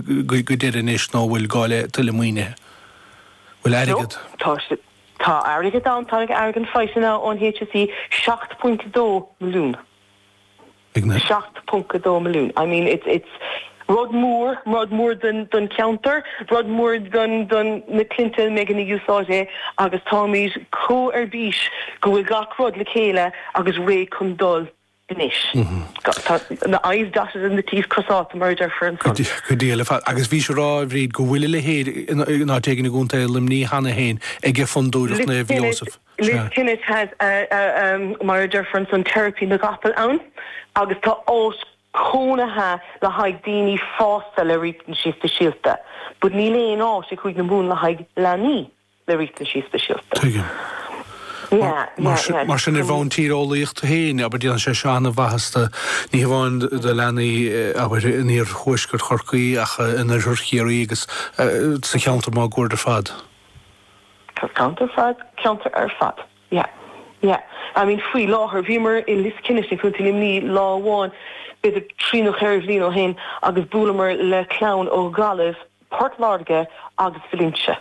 go deireadh anois nó bhfuil gá le tuilleadh maoinithe? Bhfuil airgead. Tá. Tá airgead ann. Tá airgead faighte ansan ón HSE, €7.2 milliún. €7.2 milliún. I mean it's it's rud mór, rud mór don don cheantar, rud mór don don na cliaint a mbeidh ina úsáid é agus táimid chomh ar bís go bhfuil gach rud le chéile agus réidh chun dul anois. Tá na i's dotted and the t's crosáilte, mar a deirfear ansan. Go diail ar fad. Agus bhís ag rá, a Bhríd, go bhfuil a leithéid in áit éigin i gContae Luimní cheana féin aige Fondúireacht Naomh Iósaf. Liskennett has a, mar a deirfear ansan, teiripí na gcapall ann agus tá áit chónaithe le haghaidh daoine fásta le riachtanaisí speisialta but níl aon áit sa Chúige Mumhan le haghaidh leanaí. le riachtanaisí speisialta. Tuigim. Mar sin, ar bhonn tíreolaíochta féin, abair, déanann sé seo an-mhaitheas do, ní hamháin do leanaí, abair, in iarthuaisceart Chorcaí ach in oirthear Chiarraí agus sa cheantar máguaird ar fad. Sa cheantar ar fad, ceantar ar fad. Yeah, yeah. I mean, faoi láthair, bhíomar i Liskennett i gContae Luimní lá amháin, b'fhéidir trí nó cheithre bhliain ó shin agus bhuaileamar le clann ó Ghaillimh, Port Láirge agus Valentia.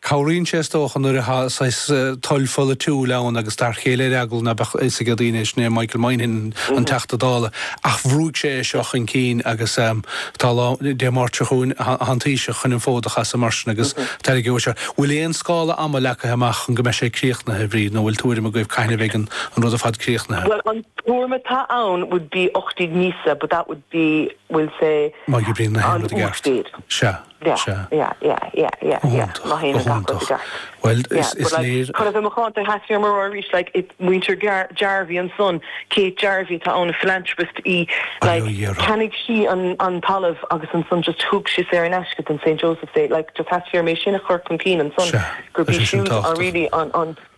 Cabhraíonn sé, is dócha, nuair atá saghas toil pholaitiúil ann agus dar chéile ar eagla ná beadh fhios ag daoine é. Sin é Michael Moynihan, an Teachta Dála, ach bhrúigh sé é seo chun cinn agus tá lá, Dé Máirt seo chugainn atá an Taoiseach chun an fód a chasadh mar sin agus tairgeoidh sé. Bhfuil aon scála ama leagtha amach chun go mbeidh sé críochnaithe, Bríd, nó bhfuil tuairim agaibh cathain a bheidh an rud ar fad críochnaithe? Bhuel, an tuairim atá ann would be 18 míosa but that would be, we'll say, Má oibríonn gach aon rud i gceart. Sea. Is ea. Go hiontach. Go hiontach. Bhuel, is léir. Chun a bheith macánta, theastaigh uaim a rá arís, like, muintir Jarvey ansan, Kate Jarvey atá ann, philanthropist í, like, cheannaigh sí an talamh agus ansan just thug sí saor in aisce don St. Joseph's é, like, just theastaigh uaim é sin a chur chun cinn ansan, gurb í siúd a really an.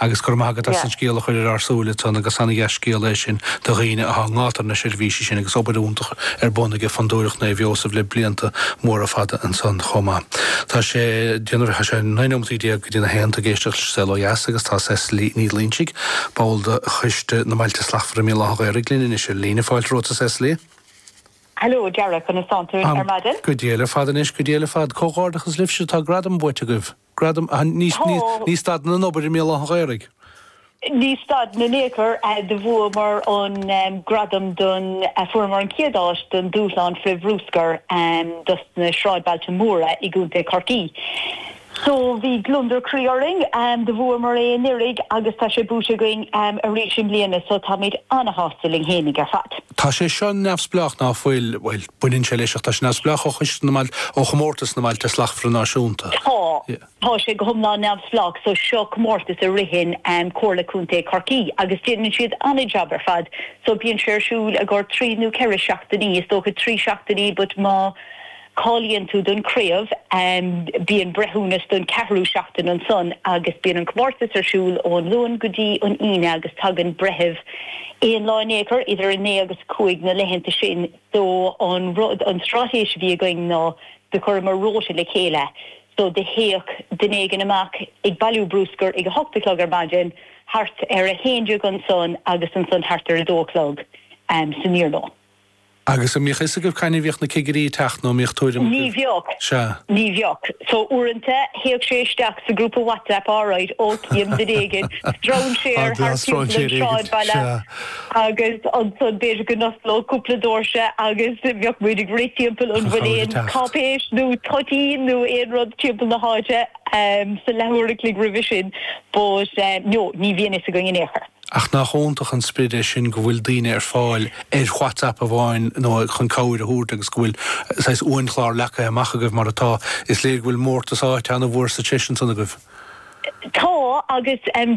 Agus go raibh maith agat as an scéal a chur ar ár súile dúinn agus ana-dhea-scéal é sin do dhaoine atá i ngátar na seirbhísí sin agus obair fhiúntach ar bun aige Fondúireacht Naomh Iósaf le blianta móra fada ansan chomh maith. Tá sé déanamh, tá sé naoi nóimeataí déag go dtí na haon, tú ag éisteacht leis An Saol Ó Dheas agus tá Cecily Ní Loinsigh, ball de choiste na mBailte Slachtmhara i mBéal Átha an Ghaorthaidh linn anois ar líne. Fáilte romhat a Cecily. Hello a Dhara, conas tánn tú ar maidin? Go diail ar fad anois, go diail ar fad. Comhghairdeachas libhse, tá gradam buaite agaibh. Gradam, ach ní stadann an obair i mBéal Átha an Ghaorthaidh. Ní stadann in aon chor. Do bhuamar an gradam don, a fuaireamar an chéad áit don Dúshlán Frith-Bhrúscair do na Sráidbhailte Móra i gContae Chorcaí. So bhí gliondar croí orainn do bhuamar é anuiridh agus tá sé buaite againn arís i mbliana so táimid ana-shásta linn fhéinig ar fad. Tá sé seo neamhspleách ná fuil, bhuel. Baineann sé leis, ach tá sé neamhspleách ó Chomórtas na mBailte Slachtmhara Náisiúnta. Tá. Tá sé go hiomlán neamhspleách so. Seo comórtas a ritheann Comhairle Contae Chorcaí agus déanann siad an-jab ar fad. So bíonn sé ar siúl i gcomhair trí nó ceithre seachtainí, is dócha trí seachtainí but má cháilíonn tú don chraobh bíonn breithiúnas don cheathrú seachtain ansan agus bíonn an comórtas ar siúl ón Luan go dtí an Aoine agus tagann breitheamh aon lá in aon chor idir a naoi agus a cúig na laethanta sin. So an rud, an straitéis a bhí againn ná do chuireamar rota le chéile. So do théadh duine éigin amach ag bailiú bruscair ag a hocht a chlog ar maidin, thart ar a haon déag ansan agus ansan thart ar a dó a chlog san iarnóin. Agus an mbíodh fhios agaibh cathain a bhíodh na cigirí ag teacht nó an mbíodh tuairim agaibh? Ní bhíodh, ní bhíodh. So uaireanta théadh sé isteach sa grúpa WhatsApp alright, ok, dhein duine éigin stróinséir thart timpeall an tsráidbhaile. Agus ansan b'fhéidir go n-osclódh cúpla doirse agus bheadh muid ag rith timpeall an bhfuil aon cáipéis nó toitín nó aon rud timpeall na háite sa leath uair an chloig roimhe sin but no, ní bhíonn fhios againn in aon chor. Ach nach iontach an sprid é sin go bhfuil daoine ar fáil ar WhatsApp amháin nó chun cabhair a thabhairt agus go bhfuil saghas uainchlár leagtha amach agaibh mar atá. Is léir go bhfuil mórtas áite an-mhór sa treis ansan agaibh. Tá agus téann